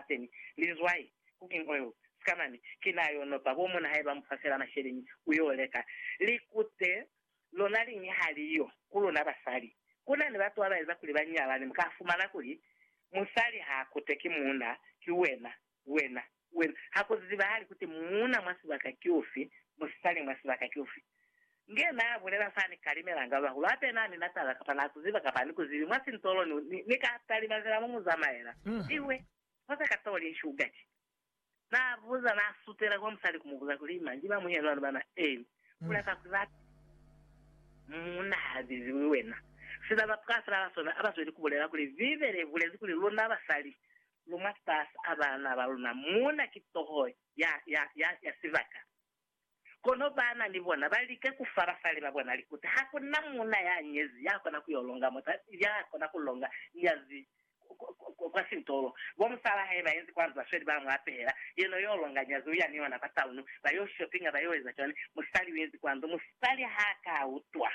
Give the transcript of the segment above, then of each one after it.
Saseni, linzwai, cooking oil, skamani, ki na yo nopa bo muna haiba mu fa fela masheleñi ku yo leka. Likute lona liñi ha li yo ku luna basali. Ku na ni batu ba ba eza kuli ba nyalane, mu ka fumana kuli musali ha kute ki muuna, ki wena, wena, wena. Ha ku zibahali kuti muuna mwa sibaka ki ufi, musali mwa sibaka ki ufi. Nge naa bulela sa ni kalimelanga bahulu hape naa ni na taba kapa naa ku ziba kapa a ni ku zibi mwa sintolo ni, ni, ni ka talima zila mu mu zamaela. Ihwe, ho sa ka too li nshuga ki. Naa buza, naa sutela kwa musali ku mu buza kuli, Manji ba muhelo ani bana? Eeni. Ku lapa kuli ba pile. Mu na ha ziziwi wena. Sina ba pwafela ba sona a ba zweli ku bulela kuli Bibele i bulezi kuli luna basali lu mwa fasi a bana ba luna, muuna ki toho ya, ya, ya, ya sibaka. Kono baana ni bona ba lika ku fa basali ba bona likuta. Ha ku na muuna ya nyezi ya kona ku yo longa mota, ya kona ku longa nyazi kwa sintolo. Bo musalaa hae ba inzi kwa ndu, ba sweli ba mu apehela. Yena u yo longa nyazi, u ya ni ona kwa taunu, ba yo shopinga, ba yo eza cwani. Musali u inzi kwa ndu, musali ha ka utwa.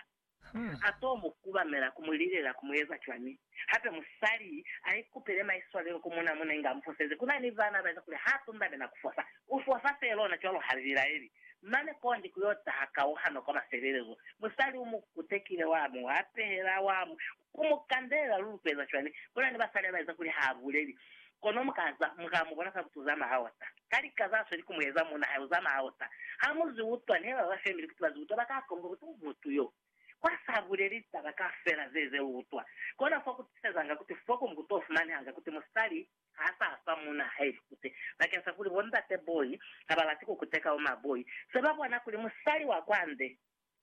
A to mu kubamela ku mu lilela ku mu eza cwani? Hape musali a ikupele maiswalelo ku mun'a muna inge a mu fosezi. Ku na ni vana ba eza kuli ha tundame na ku fosa. U fosa fee lona cwalo ha li bilaeli. Mane kondi ku yo taha kauhano kwa mafelelezo. Musali u mu kutekile, wa mu apela, wa mu. Ku mu kandelela lu lupeza cwani? Ku na ni basali ba eza kuli ha buleli. Kono mu ka za, mu ka mu bona sa butu za maota. Ka lika za sweli ku mu eza, muuna hae u za maota. Ha mu zwi utwa, ni ba ba femili kuti ba zwi utwa ba ka komba kuti u mutu yo. Kwa sa buleli litaba kaufela ze, ze lu utwa. Kona fo ku tisezanga kuti fo ku mbuto fumanehanga kuti musali ha sa fa muuna hae likute. Bakeng sa kuli bo ndate boi ha ba lati ku kuteka bo maboi, se ba bona kuli musali wa kwande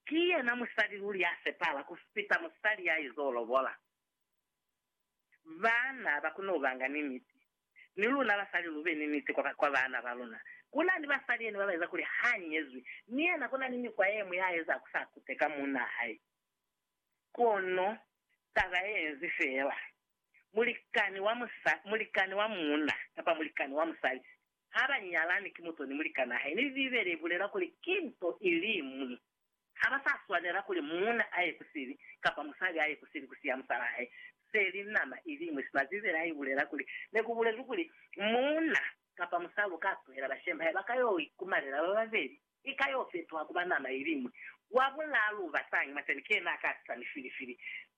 Ki yena musali luli ya sepahala ku fita musali ya izo lobola. Baana ba kona ku ba nga ni niti. Ni luna basali lu be ni niti kwa, kwa baana ba luna. Ku na ni basali yene ba ba eza kuli ha nyezwi, mi yena ku na ni mikwa ye ñwi ya eza ku sa kuteka muunaa hae. Kono taba ye nzi feela, mulikani wa musa, mulikani wa muuna kapa mulikani wa musali Ha ba nyalani ki mut'o ni mulikan'a hae, mi Bibele i bulela kuli ki nto i li ñwi. Ha ba sa swanela kuli muuna a ye ku sibi, kapa musali a ye ku sibi ku siya musal'a hae. Se li nama i li ñwi, sina Bibele ha i bulela kuli ne ku bulezwi kuli muuna kapa musali u ka tuhela bashemi ba hae ba ka yo ikumalela ba babeli. Ni ka yo fetuha kuba nama iliñwi. Wa bulalu basangi maseni ki yena a ka tisa mifilifili.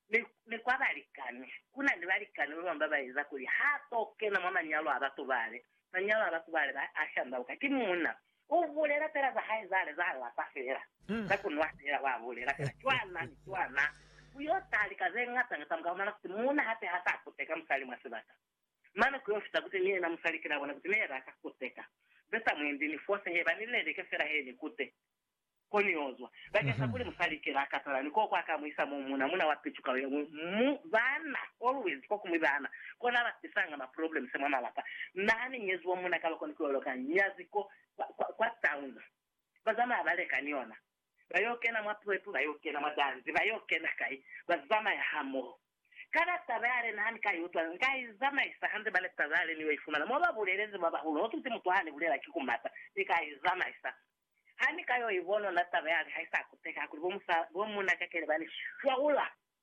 Mi, mi kwa balikani, kuna ni balikani babamwi ba ba eza kuli ha to kena mwa manyalo a batu bale. Manyalo a batu bale ba a shandauka. Ki muuna. U bulela fela za hae zale, za lapa fela, za ku nwa fela, wa bulela fela cwana ni cwana. Ku yo taha lika ze ngata ngata, mu ka fumana kuti muuna hape ha sa kuteka musali mwa sibaka. Mane ku yo fita kute ni yena musali ki la bona kute ne ya laka ku seka ze sa mu endi ni fose he ba ni leleke fela he ni kute ko ni yo zwa. Bakeng sa kuli musali ki la katala ni koko a ka mu isa mo muna, muna wa picu ka yo ñwi mu bana, always ko ku mi bana kona ba tisanga ma problems mwa malapa. Na ha ni nyeziwa muna ka loko ni ku yo loka nyazi kwa, kwa, kwa town. Ba zamaya ba leka ni yona. Ba yo kena mwa puepu, ba yo kena mwa danzi, ba yo kena kai? Ba zamaya hamoho. Kana taba yale na ni ka i utwa? Nka i zamaisa hande mane taba yale ni yo i fumana mo ba bulelezi ba bahulu. Notuti mutu ha ni bulela ki ku mata, ni ka i zamaisa. Ha ni ka yo i bonona taba yale ha i sa kuteka, hakuli bo muuna kakele ba ni shwaula.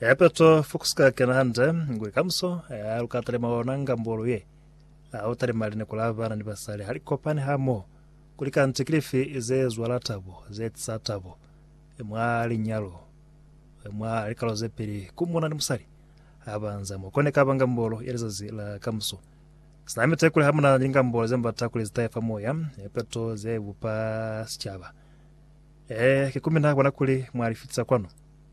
Eya Petro, fukusuka kena hande, ngwe kamuso ya luka talima ona nga mbolo ye. A u talima lineko la bana ni basali ha li kopani ha moho, kuli kanti kilifi ze zwala tabo, ze tisa tabo mwa linyalo, mwa likalo ze peli ku muna ni musali ha ba nza mo. Kone kaba nga mbolo ya lizazi la kamuso. Sina mite kuli ha muna ni nga mbolo ze mbata kuli zitaye fa moya, e peto ze bupa sicaba. E, ki ku mina bona kuli mwa li fitisa kwanu.